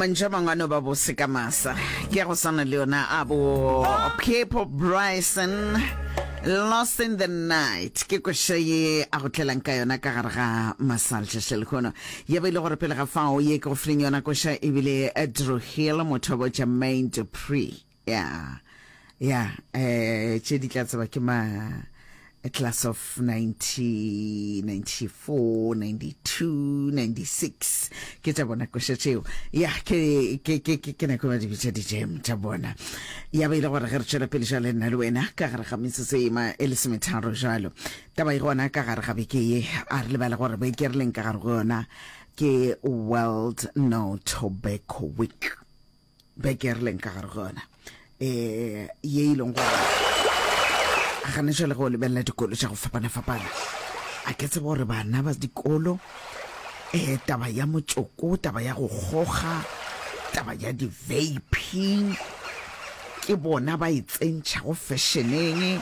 mantšu a mangwe a no ba bose ka masa ke ya go swana le yona a bo piepo bryson lost in the night ke koša ye a go tlelang ka yona ka gare ga masalšaša lehono ye ba ile gore pele ga fao ye ke go fileng yona koša ebile drew hill motho wa botša main dupree ya ya eh tše di tla tseba ke ma eh, class of 1994 92 96 ke tša bona koša tšeo ya ke ke ke ke ke nako ba di bitša di-jam tša bona ya ba ile gore ge re tšwela pele jale nna le wena ka gare ga metsotso e ma e lesometharo jalo taba e gona ka gare ga beke ye a re lebala gore beke re leng ka gare go yona ke world no tobacco week beke re leng ka gare go yona um ye e leng gore gane jale go lebelela dikolo tša go fapana-fapana a ke tsebe gore bana ba dikolo um taba ya motsoko taba ya go goga taba ya di-vaping ke bona ba e tsentšhago fešeneng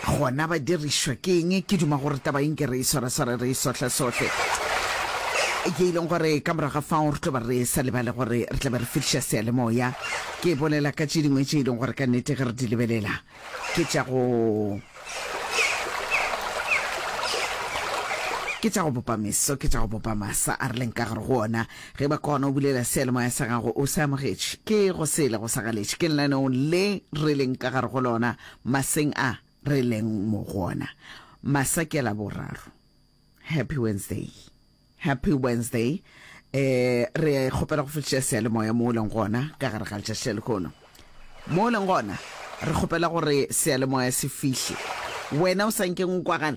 Gona ba dirišwa ke eng? Ke duma gore taba ye nke re e swarasware, re e sohlesohle, ye e leng gore ka morago ga fao re tlo ba re sa lebale gore re tla be re fihliša seyalemoya. Ke bolela ka tše dingwe tše e leng gore ka nnete ge re di lebelela ke tša go ke tša go bopa meso, ke tša go bopa masa a re leng ka gare go ona. Ge ba kgona o bulela seyalemoya sa gago, o se amogetše, ke go sele go sa galetše, ke lenaneong le re leng ka gare go lona Maseng a re leng mo go ona, masa ke Laboraro. Happy Wednesday. Happy Wednesday. E, re kgopela go fetiša seyalemoya mo o leng gona ka gare ga letšatši le lekono. Mo o leng gona, re kgopela gore seyalemoya se fihle. Wena o sa nkeng o kwagala,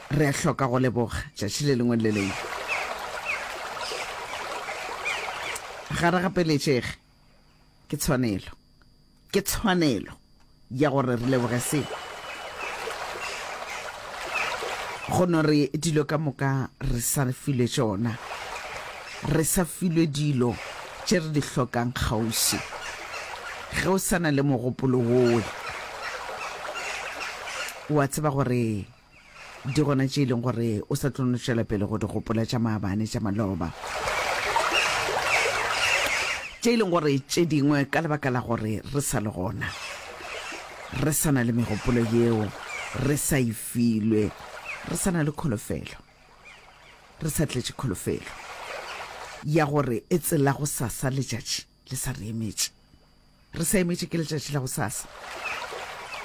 Re a hloka go leboga tšatši le lengwe le le lengwe. Ga re gapeletšege. Ke tshwanelo. Ke tshwanelo ya gore re leboge se. Go no re dilo ka moka re sa re filwe tšona. Re sa filwe dilo tše re di hlokang kgauswi. Ge o sa na le mogopolo wowe, o a tseba gore Di gona tše e leng gore o sa tlo no tšwela pele go di gopola tša maabane, tša maloba, tše e leng gore tše dingwe ka lebaka la gore re sa le gona, re sa na le megopolo yeo, re sa e filwe, re sa na le kholofelo, re sa tletše kholofelo ya gore e tsela go sasa letšatši. le sa re emetše re sa emetše ke letšatši la gosasa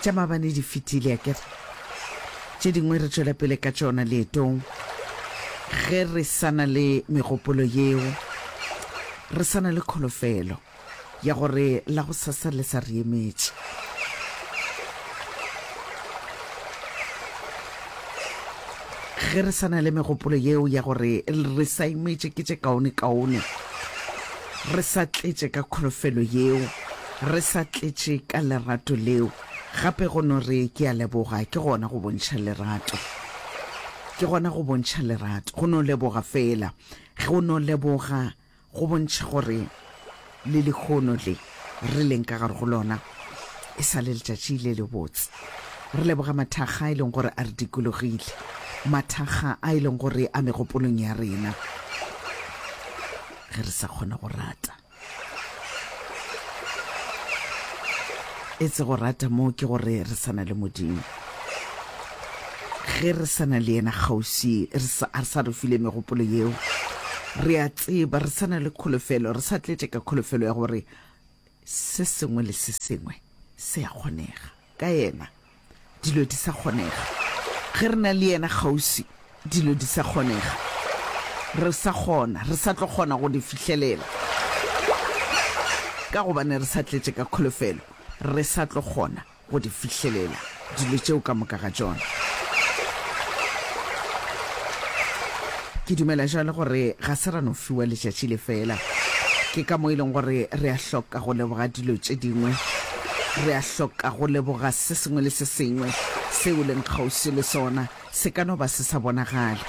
tša mabane di fetile a kere tše dingwe re tšwela pele ka tšona leetong ge re sana le megopolo yeo re sana le kholofelo ya gore la go sasa le sa re emetše ge re sana le megopolo yeo ya gore re sa emetše ke tše kaone kaone Re sa tletše ka kholofelo yeo, re sa tletše ka lerato leo, gape go no re, Ke a leboga, ke gona go bontšha lerato. Ke gona go bontšha lerato, go no leboga feela. Go no leboga go bontšha gore le lehono le re leng ka gare go lona e sa le letšatši le lebotse. Re leboga mathakga a e leng gore a re dikologile, mathakga a e leng gore a megopolong ya rena. ge re sa kgona go rata. E se go rata moo ke gore re sa na le Modimo. Ge re sa na le yena kgauswi, re sa a re sa re file megopolo yeo. Re a tseba re sa na le kholofelo, re sa tletše ka kholofelo ya gore Se sengwe le se sengwe se a kgonega ka Yena. Dilo di sa kgonega. Ge re na le Yena kgauswi, dilo di sa kgonega. Re sa kgona, re sa tlo kgona go di fihlelela. Ka gobane re sa tletše ka kholofelo, re sa tlo kgona. go di fihlelela, dilo tšeo ka moka ga tšona. Ke dumela jalo gore ga se ra no fiwa letšatši le fela. Ke ka mo e leng gore re a hloka go leboga dilo tše dingwe. Re a hloka go leboga se sengwe le se sengwe seo o leng kgauswi le sona. Se ka no ba se sa bonagale,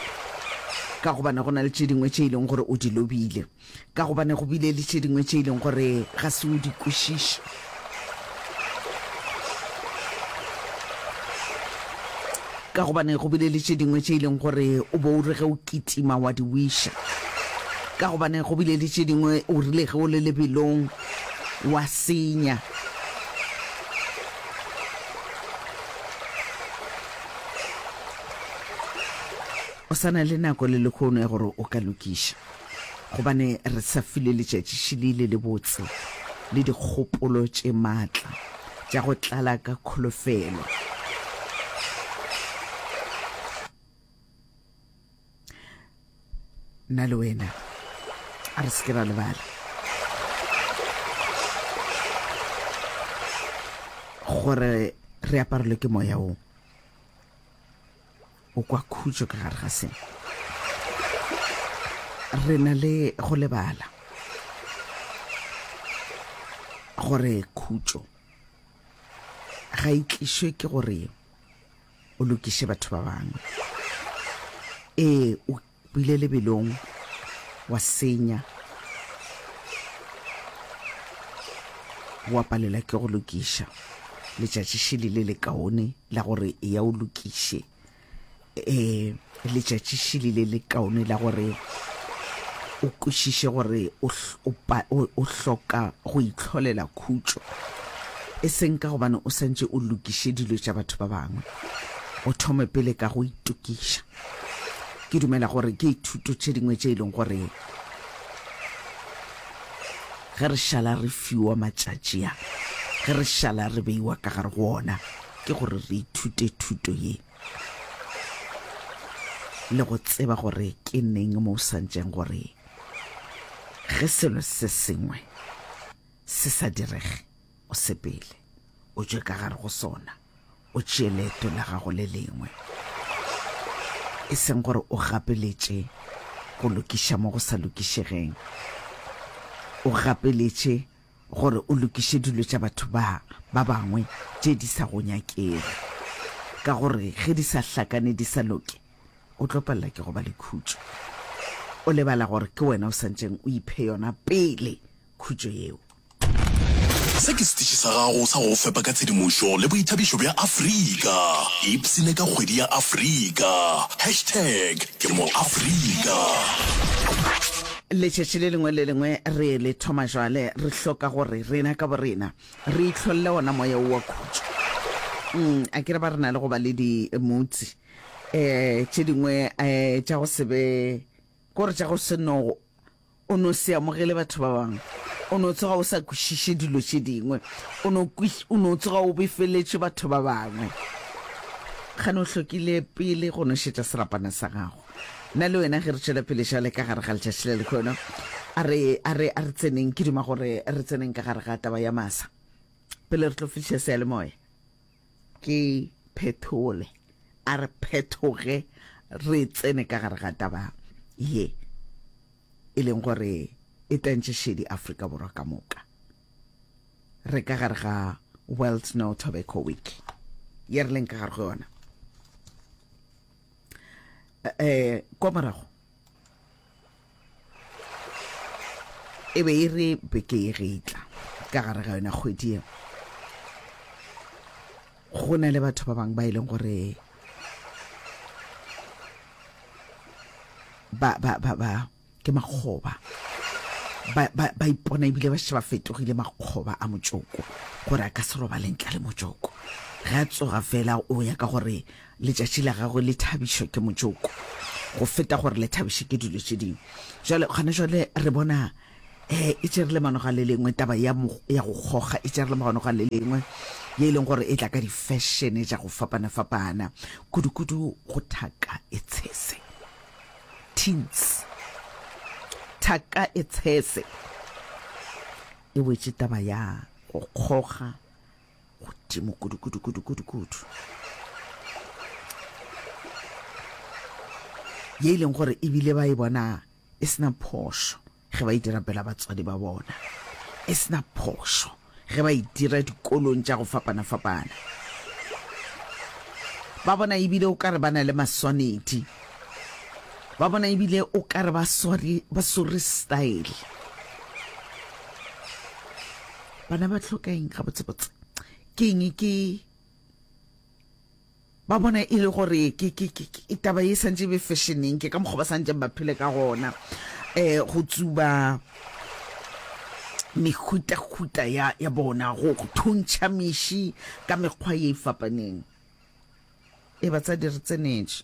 ka gobane go na le tše dingwe tše e leng gore o di lobile. ka gobane go bile le tše dingwe tše e leng gore ga se o di kwešiše ka gobane go bile le tše dingwe tše e leng gore o bo o re ge o kitima wa di wiša ka gobane go bile le tše dingwe o rile ge o le lebelong wa senya o sana le nako le lekgono ya gore o ka lokiša gobane re sa file letšatšišili le lebotse le dikgopolo tše matla tša go tlala ka kholofelo. Nna le wena a re seke ra lebala gore re aparelwe ke moya o o kwa khutšo ka gare ga seng re na le go lebala gore khutšo ga e tlišwe ke gore o lokiše batho ba bangwe ee o O ile lebelong, wa senya, wa palela ke go lokiša. Letšatši šele le le kaone la gore e ya o lokiše. um letšatši šele le le kaone la gore o kwešiše gore o hl- o pa- o- o hloka go itlholela khutšo e seng ka gobane o santše o lokiše dilo tša batho ba bangwe o thome pele ka go itokiša Ke dumela gore ke ithuto tše dingwe tše e leng gore ge re šala re fiwa matšatši a, ge re šala re beiwa ka gare go ona, ke gore re ithute thuto ye le go tseba gore ke neng mo o santšeng gore ge selo se sengwe se sa direge o sepele o tšwe ka gare go sona o tšee leeto la gago le lengwe e seng gore o gapeletše go lokiša mo go sa lokišegeng o gapeletše gore o lokiše dilo tša batho ba ba bangwe tše di sa go nyakego ka gore ge di sa hlakane di sa loke o tlo palela ke go ba le khutšo o lebala gore ke wena o santseng o iphe yona pele khutšo yeo. Se ke setiši sa gago sa go fepa ka tshedimošo le boithabišo bja Afrika. Ipsine ka kgwedi ya Afrika. Hashtag ke moAfrika. Letšatši le lengwe le lengwe re le thoma jwale, re hloka gore rena ka borena re itlholle ona moya wo wa khutšo. Um, a ke re ba re na le go ba le dimutsi um tše dingwe um tša go se be kore tša go se no O no se amogele batho ba bangwe. O no tsoga o sa kwešiše dilo tše dingwe. O no, o no tsoga o befeletše batho ba bangwe. Gane o hlokile pele go nošetša serapana sa gago. Nna le wena ge re tšwela pele šale ka gare ga letšatši le lekgono, a re, a re, a re tseneng, ke duma gore re tseneng ka gare ga taba ya masa pele re tlo fihliša seyalemoya. Ke phethole, a re phethoge re tsene ka gare ga taba ye e leng gore e tentše šedi Afrika Borwa ka moka. Re ka gare ga World No Tobacco Week ye re leng ka gare go yona. Eh, kwa morago e be e re beke e getla ka gare ga yona kgwedi e go na le batho ba bangwe ba e leng gore ba ba ba ba ke makgoba ba ba ba ipona ebile ba sheba fetogile makgoba a motsoko gore a ka se robaleng tla le motsoko ga tsoga fela o ya ka gore Letšatši la gagwe le thabišwa ke motšoko go feta gore le thabišwe ke dilo tše dingwe. Jale gona jale re bona eh, e tšere le manoga le lengwe taba ya, mo, ya go kgoga e tšere le manoga le lengwe ye e leng gore e tla ka difešene tša go fapana-fapana kudu-kudu go thaka e tshese teens thaka e tshese e wetše taba ya go kgoga godimo kudukudukudukudukudu ye e leng gore ebile ba e bona e sena phošo ge ba e dira pela batswadi ba bona e sena phošo ge ba e dira dikolong tša go fapana-fapana ba bona ebile o ka re ba na le maswanedi ba bona ebile o ka re ba sware style bana ba tlhoka eng ga botsebotse ke eng ke ba bona e le gore ke ke ke ke- taba e santse e be fashioneng ke ka mokgwa ba santseng ba phele ka gona um go tsuba mehutahuta ya ya bona go go thuntšha meši ka mekgwa ye e fapaneng e batsadi re tsenetše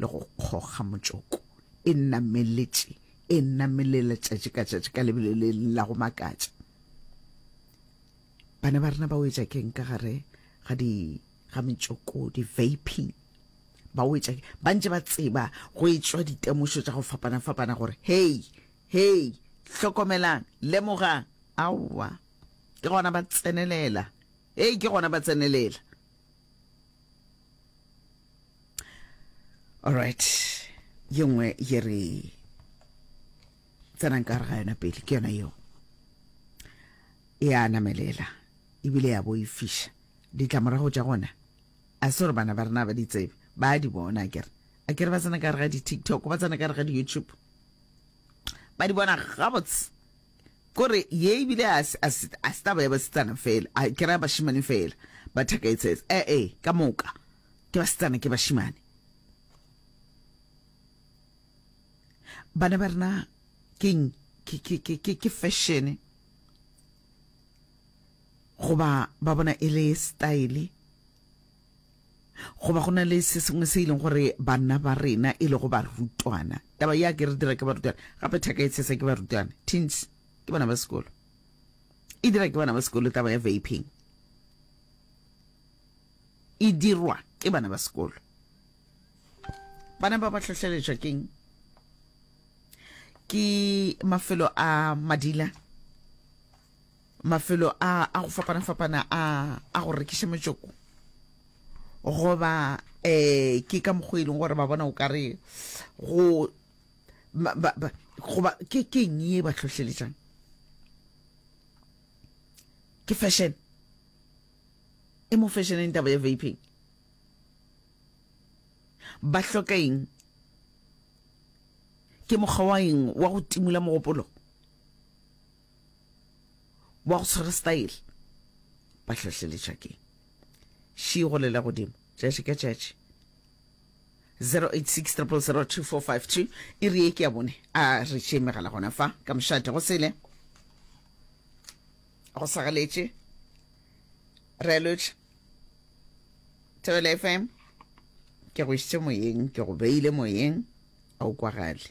le go kgoga motšoko e nameletše e namelela tšatši ka tšatši ka lebele le la go makatša bana ba rena ba wetša keng ka gare ga di ga metšoko di-vaping ba wetša ba ntse ba tseba go etswa ditemošo tša go fapana-fapana gore hei hei hlokomelang lemogang aowa ke gona ba tsenelela hei ke gona ba tsenelela all right ye nngwe ye re tsenang ka gare ga yona pele ke yona yeo ya namelela ebile ya bo e fiša ditlamorago tša gona a se gore bana ba rena ba di tsebe ba di bona kere a kere ba tsena ka gare ga di-tiktok ba tsena ka gare ga di-youtube ba di bona gabotse Kore ye ebile a se a se a se taba ya basetsana fela, a ke ra bashimane fela ba thaka etsets e e ka moka ke basetsana ke bashimane. Bana ba rena keng ke ke ke ke ke fashion goba ba bona e le style. Goba go na le se sengwe se e leng gore banna ba rena e lego barutwana, taba ya ke re dira ke barutwana, gape thaka e tshesa ke barutwana, teens, ke bana ba sekolo, e dira ke bana ba sekolo taba ya vaping, e dirwa ke bana ba sekolo. Bana ba ba hlohleletšwa keng? Ke mafelo a madila. mafelo a a go fapana-fapana a a go rekiša metsoko goba eh ke ka mokgwa e leng gore ba bona o ka re go goba ke keng ye ba tlhohleletšang ke fashion e mo fashioneng taba ya vaping ba hloka eng ke mokgwa wa eng wa go timola mogopolo Ba go tshwere style ba hlohleletša ke She go lela godimo tšatši ka tšatši 0860002452 iri ye ke ya bone a re tšee megala gona fa ka mošate go sele go sagaletše relotše Thobela FM ke go išitše moyeng ke go beile moyeng a o kwagale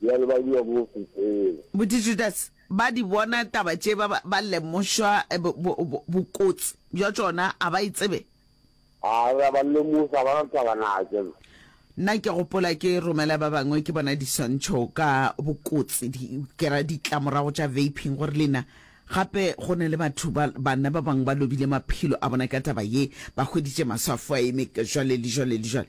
di a lebadiwa mo Bosetseng. Bodijudase ba di bona taba tše, ba ba, ba lemošwa bo, bo, bo, bokotsi bja tšona, a ba e tsebe. A re a ba lemoša, ba na taba na ke. Nna ke gopola ke romela ba bangwe, ke bona diswantšho ka bokotsi, di, ke ra ditlamorago tša vaping, gore lena, gape go na le batho ba, banna ba bangwe ba lobile maphelo a bona ka taba ye, ba hweditše maswa a fo a eme, jwale le jwale le jwale.